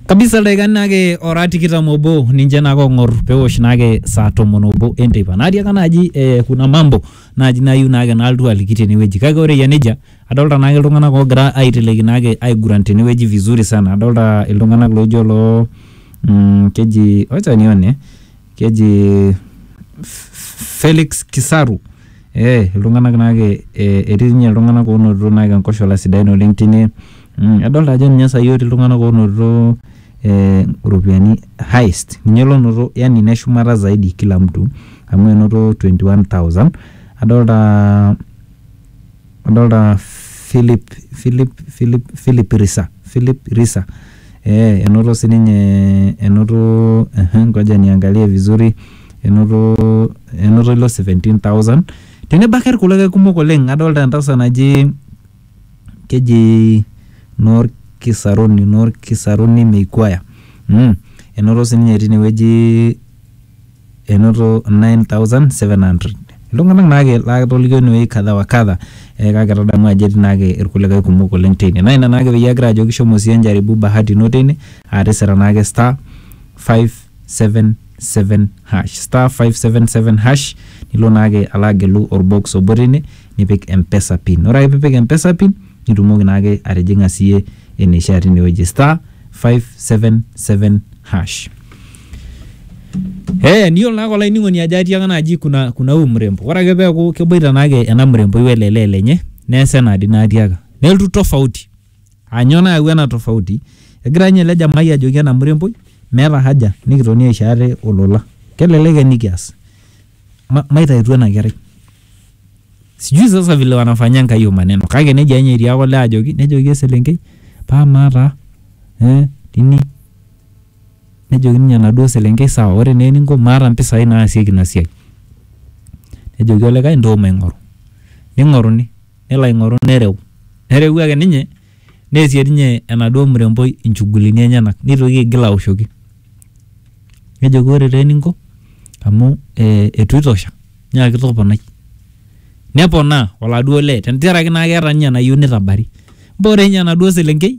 kabisa ildaikani naake ora tikitam obo ninche naake ong'or pewosh naake saa tomon obo enteipa natiaka naaji eh, kuna mambo naaji nayieu naake naaltu aliki tenewueji kake ore eyia nejia adolta naake iltung'anak oogira aiteleki naake aiguran tenewueji vizuri sana adolta iltung'anak loijo loo mm, keji wacha nione keji F- F- Felix Kisaru Ee iltung'anak naake etii ninye iltung'anak oonotito naake enkoshola sidain oleng' tine, adolta ajo ninye saai otii iltung'anak oonotito ee iropiani highest ninye lonoto yani ine shumata zaidi kila mtu amu enoto twenty one thousand. Adolta adolta Phillip Phillip Phillip Phillip Risa Phillip Risa. Ee enoto sininye enoto ehe ngoja niangalie vizuri enoto enoto ilo 17,000 tenebo ake irkulikae kumok oleng adolta entasat naji keji Norkisaruni Norkisaruni Meikuaya mm enoto sininye tinewueji enoto 9,700 iltung'anak naake laatolikio inewueji kadha wa kadha eh, kake tadamu ajo etii naake irkulikae kumok oleng teine naa ina naake peyie agira ajoki shomo siyie njaribu bahati ino teine atisira naake star 577 hash star 577 hash nilo naake alo agelu orbox obo teine nipik mpesa pin ore ake piipik mpesa pin nitumoki naake atijing'a siyie eneishaa tinewueji star 577 hash Hey, niyiolo naa olainining'oni ajo atiaka naaji kuna, kuna huyu mrembo ore ake peeku keboita naake ena mremboi wele lee lenye neesa enadi naatiaka nelotu tofauti anyoo nayawua ena tofauti egira ninye ele jamai ajoki ena mremboi meeta haja nikitoni aisho ate olola kelelek enikias ma, maitautu ena kerai sijui sasa vile wanafanya enkai hiyo maneno kake nejia ninye etiaka olee ajoki nejoki eselenkei paa amaa taa eh, tini Nejoki ninye enaduo selenkei sawa ore naa eninko maata mpisai naasieki ina siai. Nejoki olikae ntoo maing'oru. Ning'oruni. Nelo aing'oru nereu. Nereu ake ninye neesie ninye enaduo mremboi inchugulini enyenak nitoki aigil aoshoki. Nejoki ore taa eninko amu eitu itosha nyaaki toponai. Neponaa oladuo lee tenteraki naa keeta ninye enayieu nitabari. Ore ninye enaduo selenkei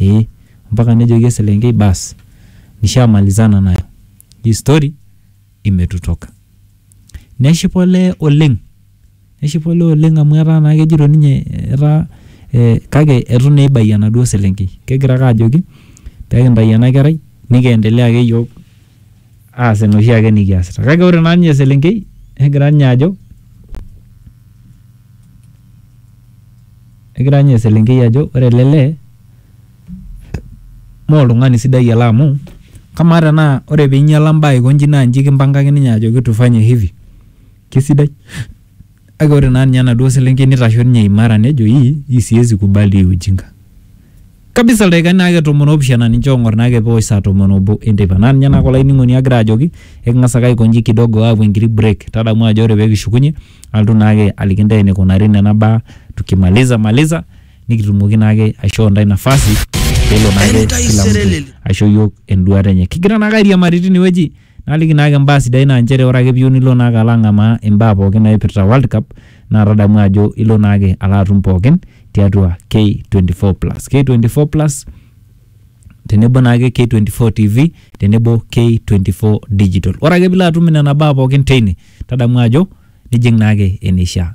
ee mpaka nejoki eselenkei baas nishamalizana nayo hii story imetutoka neshipa olee oleng neshipa olee oleng amu etaa naa kejito ninye etaa eh, kake etu naa eibayie enaduo selenkei kegira ake ajoki pekintai ena kerai nikiendelea ake iyiok aas enoshi ake nikiasita kake ore naa ninye eselenkei negira ninye ajo. Egira ninye eselenkei ajo ore ele lee mee oltung'ani sidai ele amu kamaa tenaa ore peinyiala imbaa aiko inji naa inji kimpangaki ninye ajoki tufanye hivi kisidai? Kake ore naa ninye enaduo selenkei neitasho ninye imara nejo ii siezi kubali hii ujinga. kabisa ildaikani naake tomon oopishana ninche oong'or naake peosh saa tomon obo enteipa naa ninye naake olainining'oni agira ajoki eking'as ake aikonji kidogo aapuo enkiti break tadamu ajo ore peekishukunye alotu naake aliki intae enikunari nena baa tukimaliza maliza nikitumoki naake aishoo intae nafasi peelo naake kila mtu aisho iyiok enduata enye kigira naake airiamari tinewueji Naliki naake mbaa sidain naa nchere ore ake piyieu nilo naake alo ang'amaa imbaa pookin naipirta World Cup naa tadamu ajo ilo naake alo atum pookin tiatua K24 plus. K24 plus tenebo naake K24 TV tenebo K24 digital. Ore ake piilo atum nena baa pookin teine tadamu ajo nijing' naake eneishaa.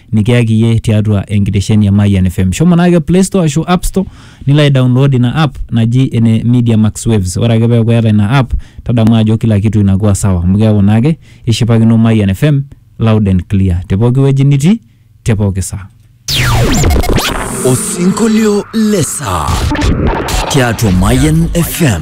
nikiyaki iyie tiatua enkitesheni e Mayian FM. Shomo naake Play Store ashu App Store nilo aidownload ina app naji ene Media Max Waves. Ore ake peeku eeta ina app tadamu ajo kila kitu inakuwa sawa amu keeku naake ishipakino Mayian FM loud and clear te pooki wueji nitii te pooki saa. Osinkolio le saa tiatua Mayan FM.